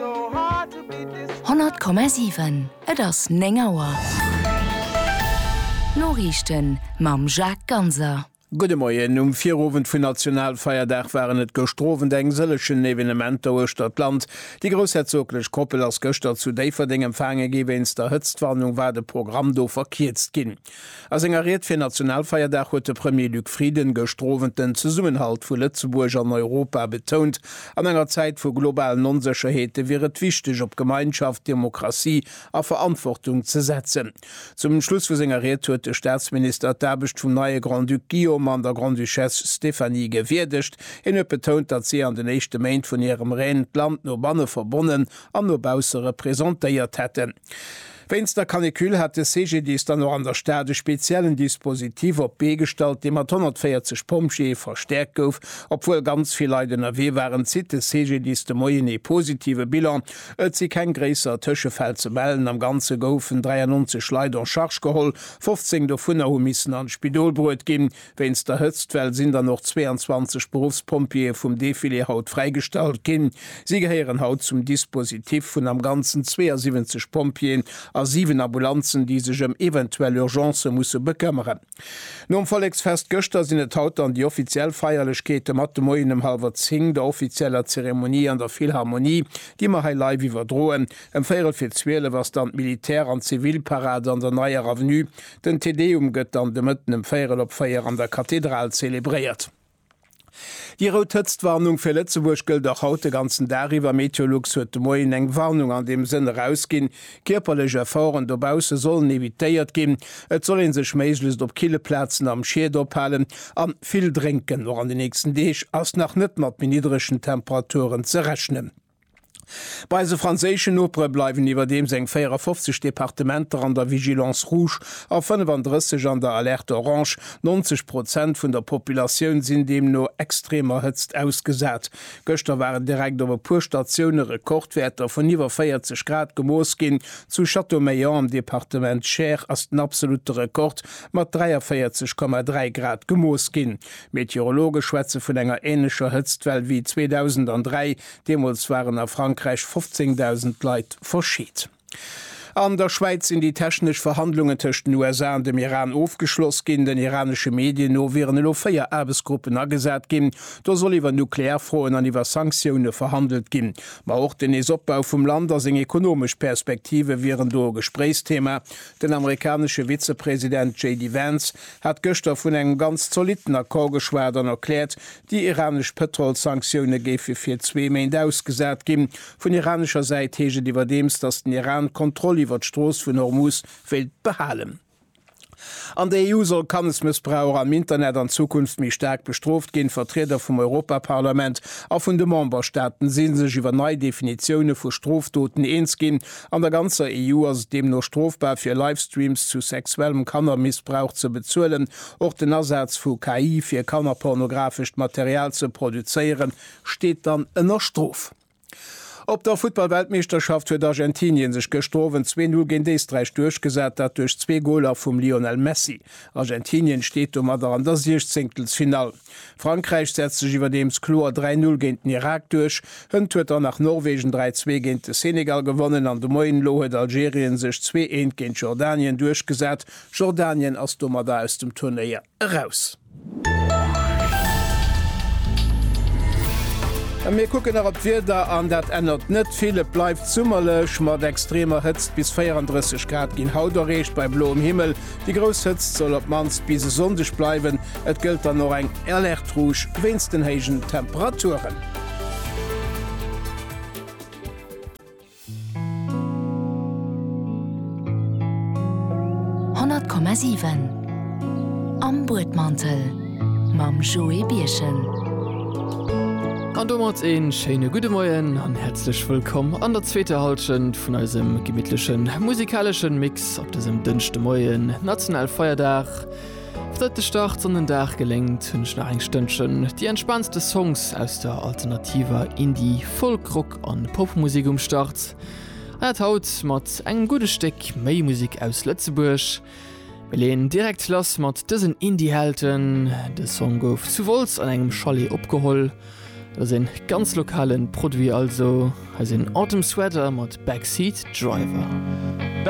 100,7 Et ass 9 Auer. D'Noriichten mam Jacques Ganser. Gudde Moien. Um Virowend vun Nationalfeierdag waren et gëscht Owend eng sëllegen Evenementer uechtert d'Land. Déi groussherzoglech Koppel ass gëschter zu Déifferdeng empfaange gi. Wéinst der Hëtztwarnung war de Programm do verkierzt ginn. A senger Ried fir Nationalfeierdag huet de Premier Luc Frieden gëscht Owend den Zesummenhalt vu Lëtzebuerg an Europa betount. An enger Zäit vu globalen Onsécherheete wier et wichteg, op Gemeinschaft, Demokratie a Verantwortung ze setzen. Zum Schluss vu senger Ried huet de Staatsminister d'Aarbecht vum neie Grand-Duc Guillaume an der Grande-Duchesse Stéphanie gewierdegt. Hien huet betount, datt si an den éischte Méint vun hirem Règne d'Land no banne verbonnen an no bausse representéiert hätten. Wéinst der Canicule hat de CGDIS dann och an der Stad e speziellen Dispositif op d'Bee gestallt, dee mat 140 Pompjeeë verstäerkt gouf. Obwuel ganz vill Leit ënnerwee waren, zitt de CGDIS de Moien ee positive Bilan. Et si keng gréisser Tëschefäll ze mellen. Am Ganze goufen 93 Leit en charge geholl, 15 dovunner hu missen an d'Spidol bruet ginn. Wéinst der Hëtztwell sinn dann och 22 Beruffspompjeeë vum Defilé haut fräigestallt ginn. Si gehéieren haut zum Dispositif vun am Ganzen 72 Pompjeeën a 7 Ambulanzen, déi sech ëm eventuell Urgencë musse bekëmmeren. Nom Volleksfest gëschter sinn et haut dann déi offiziell Feierlechkeete mat de Moien ëm hallwer 10 der offizieller Zeremonie an der Philharmonie, déi mer hei live iwwerdroen. Ëm véierel fir 12 ass dann d'Militär an Zivilparade an der Neier Avenue. Den Te Deum gëtt dann de Mëtten ëm véierel op véier an der Kathedral zelebréiert. Déi rout Hëtztwarnung fir Lëtzebuerg gëllt och haut de ganzen Dag iwwer. Meteolux huet de Moien eng Warnung an deem Sënn erausginn. Kierperlech Efforten dobausse sollen evitéiert ginn. Et soll ee sech méiglechst op kille Plazen am Schied ophalen an vill drénken. Och an de nächsten Deeg ass nach net mat méi niddregen Temperaturen ze rechnen. Bei eise franséischen Nopere bleiwen iwwerdeems eng 54 Departementer an der Vigilance rouge a 35 an der Alerte orange. 90 Prozent vun der Populatioun sinn deemno extremer Hëtzt ausgesat. Gëschter waren direkt op e puer Statioune Rekordwäerter vun iwwer 40 Grad gemooss ginn. Zu Châteaumeillan am Departement Cher ass den absolutte Rekord mat 43,3 Grad gemooss ginn. Meteorologe schwätze vun enger änlecher Hëtztwell wéi 2003, deemools waren a Frankräich 15.000 Leit verscheet. An der Schwäiz sinn déi technesch Verhandlungen tëscht den USA an dem Iran ofgeschloss ginn. Den iranesche Medien no wieren elo véier Aarbechtsgruppen agesat ginn. Do soll iwwer nuklear Froen an iwwer Sanktioune verhandelt ginn. Ma och den Neesopbau vum Land a seng ekonomesch Perspektive wieren do e Gespréichsthema. Den amerikanesche Vizepresident JD Vance hat gëschter vun engem ganz zolitten Accord geschwat an erkläert, déi iranesch Pëtrolssanktioune géife fir zwee Méint ausgesat ginn. Vun iranescher Säit heescht et iwwerdeems, datt den Iran d'Kontroll iwwert d'Strooss vun Hormuz wéilt behalen. An der EU soll Kannesmëssbrauch am Internet an Zukunft méi staark bestrooft ginn. D'Vertrieder vum Europaparlament a vun de Memberstaaten si sech iwwer nei Definitioune vu Strofdoten eens ginn, An der ganzer EU ass et deemno strofbar, fir Livestreams zu sexuellem Kannermissbrauch ze bezuelen. Och den Asaz vu KI, fir kannerpornografescht Material ze produzéieren, steet dann ënner Strof. Op der Futtballweltmeeschterschaft huet Argentinien sech gëschter Owend zwee Null géint Éisträich duerchgesat, dat duerch zwee Goler vum Lionel Messi. Argentinien steet domadder an der Siechzéngtelsfinall. Frankräich setzt sech iwwerdeems kloer 3 Null géint den Irak duerch. Hënt huet dann nach Norwegen 3 Zwee géint de Senegal gewonnen an de Moien elo huet Algerien sech Zwee Eent géint Jordanien duerchgesat. Jordanien ass domadder aus dem Turnéier eraus. A mir kucken nach op d'Wieder an dat ännert net vill. Et bleift summerlech mat extremer Hëtzt. Bis 34 Grad ginn haut erreecht bei bloem Himmel. Déi grouss Hëtzt soll op d'mannst bis e Sonndeg bleiwen. Et gëllt dann och eng Alerte rouge wéinst den héijen Temperaturen. Honnert Komma siwen Am Buedmantel mam Joé Birchen. An domat een schéine gudde Moien an häerzlech wëllkomm an der zweeter Halschent vun eisem gemittlechen musikaleschen Mix. Grouss op dësem Dënschdemoien, nationale Feierdag. Seit de Start an den Dag geléngt, hunn ech nach eng Stënnchen déi entspaantste Songs aus der alternativer Indie-, Folk-, Rock an Popmusik um Start. An dat haut mat engem gudde Stéck méi Musik aus Lëtzebuerg. Mir leen direkt lass mat dësen Indie-Helden. De Song gouf zu Wolz an engem Chalet opgeholl. Dat ass een ganz lokalen Produit also. Hei sinn Autumn Sweater mat Backseat Driver.